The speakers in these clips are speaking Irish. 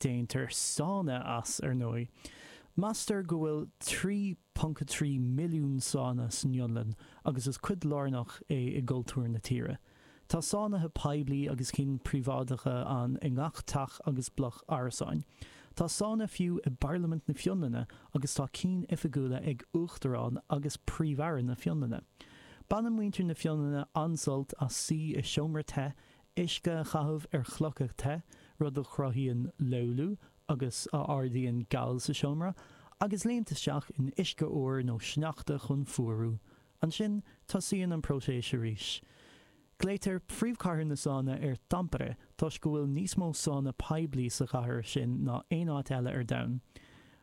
Déantar sána as, ar ndóigh. Meastar go bhfuil 3.3 milliún sána san Fhionlainn agus is cuid lárnach é i gcultúr na tíre. Tá sánaithe poiblí agus cinn príobháideacha ann i ngach teach agus bloc árasáin. Tá sána fiú i bParlaimint na Fionlainne agus tá cinn oifigiúla ag Uachtarán agus Príomh-Aire na Fionlainne. Baineann muintir na Fionlainne an-sult as suí i seomra te uisce a chaitheamh ar chlocha te, rud a chruthaíonn löyly agus a ardaíonn gal sa seomra, agus léimt isteach in uisce fhuar nó sneachta chun fuarú. Ansin, tosaíonn an próiseas arís. Glaoitear 'príomhchathair na sána' ar Tampere toisc go bhfuil níos mó sána poiblí sa chathair sin ná aon áit eile ar domhan.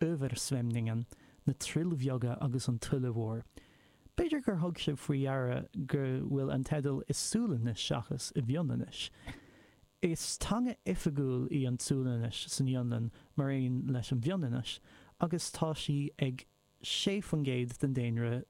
'Översvämningen', 'Na Troill Bheaga' agus 'An Tuile Mhór'. B'fhéidir gur thug sibh faoi deara go bhfuil an teideal i Sualainnis seachas i bhFionlainnis. Is teanga oifigiúil í an tSualainnis san Fhionlainn mar aon leis an bhFionlainnis agus tá sí ag 6% den daonra